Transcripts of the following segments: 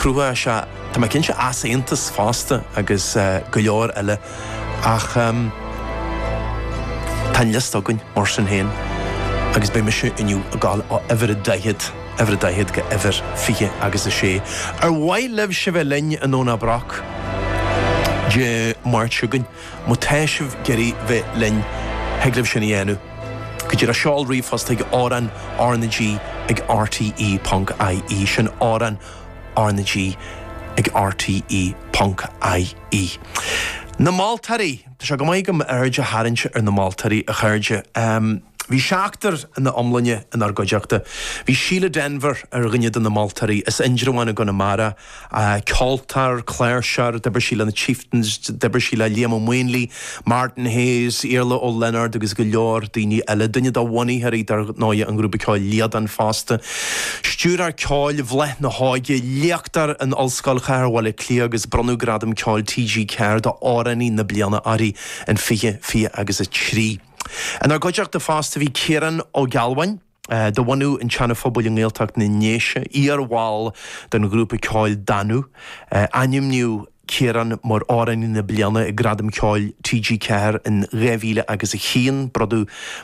Cruthóidh sé, tá mé cinnte, easaontas fosta agus go leor eile ach tá an liosta againn mar sin féin agus beidh mise inniu ag dul ó uimhir a daichead, uimhir a daichead, go uimhir fiche agus a sé. Ar mhaith libhse a bheith linn i nDomhnach Broc Dé Máirt seo chugainn? Má tá sibh ag iarraidh bheith linn, thig libh sin a dhéanamh go díreach seol ríomhphost chuig, amhráin, RnaG, ag RTÉ.ie, sin, amhráin, RnaG ag RTE.ie. Na Moltóirí! Tá sé go maith agam aird a tharraingt ar na moltóirí, a chairde. Bhí seachtar ina iomláine inár gcuideachta. Bhí Síle Denvir ar dhuine de na moltóirí, as Indreabhán i gConamara. Ceoltóir, cláirseoir, d'oibrigh sí le na Chieftains, d'oibrigh sí le Liam Ó Maonlaí, Martin Hayes, Iarla Ó Lionáird agus go leor daoine eile. Duine de bhunaitheoirí, dar ndóigh, an ghrúpa ceoil Líadan fosta. Stiúrthóir ceoil Bhláth na hÓige, léachtóir in Ollscoil Chathair Bhaile Átha Cliath agus bronnadh Gradam Ceoil TG4 do Amhránaí na Bliana uirthi in 2023. Inár gcuideachta fosta bhí Ciarán Ó Gealbháin, de bhunadh an tSeana Phobail i nGaeltacht na nDéise, iar-bhall den ghrúpa ceoil Danú. Ainmníodh Ciarán mar Amhránaí na Bliana ag Gradaim Ceoil TG4 in 2001,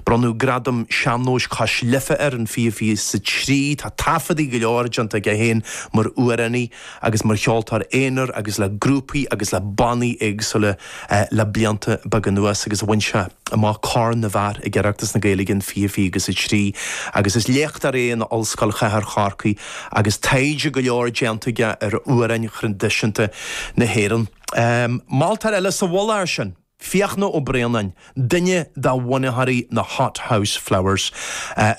bronnadh Gradam Sean-nóis Cois Life air in 2023. Tá taifeadaí go leor déanta aige féin mar amhránaí. agus mar cheoltóir aonair agus le grúpaí agus le bannaí éagsúla le blianta beaga anuas agus bhain sé amach Corn na bhFear ag Oireachtas na Gaeilge in 2023 agus is léachtóir é in Ollscoil Chathair Chorcaí agus taighde go leor déanta aige ar amhráin thraidisiúnta na hÉireann. Moltóir eile sa mhullach air sin. Fiachna Ó Braonáin, duine de bhunaitheoirí na Hothouse Flowers.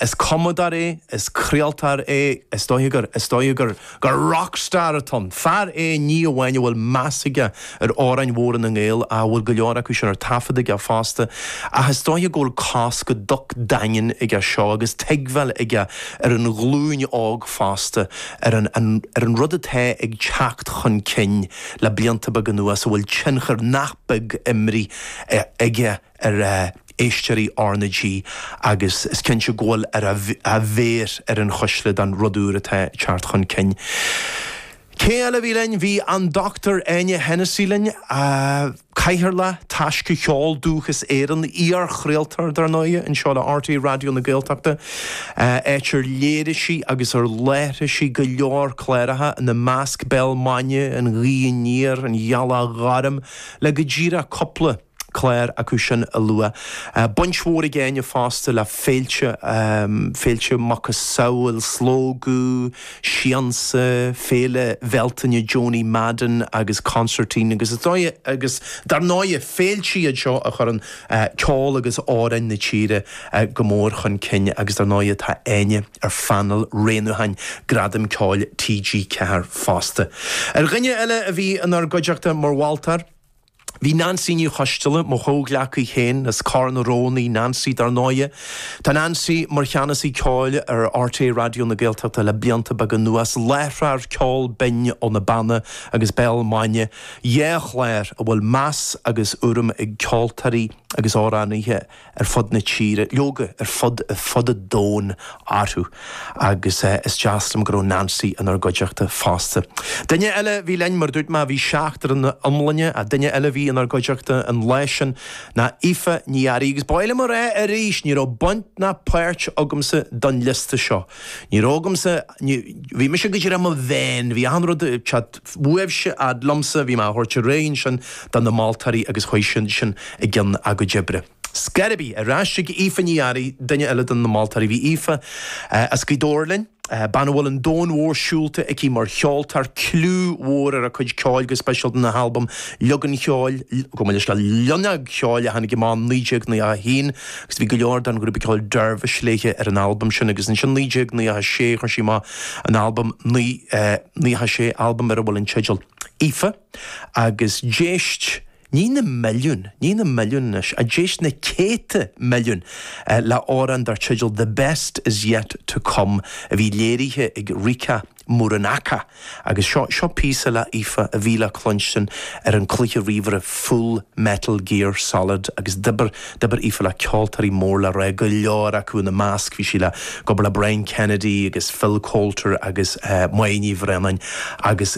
Is cumadóir é, is craoltóir é, is dóiche gur, is dóiche gur, gur rock star atá ann. Fear é ní amháin a bhfuil meas aige ar amhráin mhóra na nGael, a bhfuil go leor acu sin ar taifead aige fosta, ach is dóiche go bhfuil cos go docht daingean aige seo agus tuigbheáil aige ar an ghlúin óg fosta ar an, ar an rud atá ag teacht chun cinn le blianta beaga anuas a bhfuil tionchar nach beag imeartha aige ar éisteoirí RnaG agus is cinnte go bhfuil a, a mhéar ar an chuisle don rud úr atá ag teacht chun cinn. Cé eile a bhí linn? Bhí an Dr Áine Hensey linn, cathaoirleach Taisce Cheol Dúchais Éireann, iar-chraoltóir, dar ndóigh, anseo le RTÉ Raidió na Gaeltachta. Áit ar léirigh sí agus ar láithrigh sí go leor cláracha, ina measc Béal Maidine, An Ghaoth Aniar, An Ghealach Ghorm, le go díreach cúpla clár acu sin a lua. Baint mhór ag Áine fosta le féilte, féilte macasamhail, Slógadh, Siansa, Féile Bhealtaine Joanie Madden agus Consairtín agus is dóigh, agus dar ndóigh, féilte iad seo a chuireann ceol agus amhráin na tíre go mór chun cinn agus dar ndóigh tá Áine ar phainéal roghnúcháin Gradam Ceoil TG4 fosta. Ar dhuine eile a bhí inár gcuideachta mar mholtóir, bhí Neansaí Ní Choisdealbha, mo chomhghleacaí féin as Cor na Rón í Neansaí dar ndóigh. Tá Neansaí mar Cheannasaí Ceoil ar RTÉ Raidió na Gaeltachta le blianta beaga anuas, láithreoir Ceol Binn ó na Beanna agus Béal Maidine, Dhá chlár a bhfuil meas agus urraim ag ceoltóirí agus amhránaithe ar fud na tíre, leoga, ar fud fud an domhain, orthu agus is deas liom go raibh Neansaí inár gcuideachta fosta. Duine eile a bhí linn, mar a dúirt mé, bhí seachtar ina iomlán, ach duine eile a bhí inár gcuideachta an lá sin ná Aoife Ní Fhearraigh. Agus ba mhaith liom a rá arís, ní raibh baint ná páirt agamsa den liosta seo. Ní raibh agamsa, bhí mise go díreach i mo vein, bhí achan rud, cad, Uaibhse ad liomsa a bhí mé á thabhairt araon sin do na moltóirí agus chuaigh siad sin i gcionn a gcuid oibre. Scairby, ar ais chuig Aoife Ní Fhearraigh, duine eile de na moltóirí. Bhí Aoife as Gaoth Dobhair linn, bean a bhfuil an domhan mór siúlta aici mar cheoltóir, cliú mhór ar a cuid ceoil go speisialta na halbaim Loinneog Cheoil, chomh maith leis na Loinneog Cheoil a tháinig amach 1991 agus bhí go leor den ghrúpa ceoil Dervish léithe ar an albam sin agus ansin 1996 chuir sí amach an albam naoi Ní sé albam ar a bhfuil an teideal Aoife agus d'éist ní na milliúin, ní na milliúin anois, ach d'éist na céadta milliúin le amhrán dar teideal The Best Is Yet To Come a bhí léirithe ag Rika Muranaka agus seo, seo píosa le hAoife a bhí le cluinstin ar an cluiche ríomhaire Full Metal Gear Solid agus d'oibir D'oibir Aoife le ceoltóirí mór le rá, go leor acu ina measc bhí sí le ag obair le Brian Kennedy agus Phil Coulter agus Moya Ní Bhraonáin agus.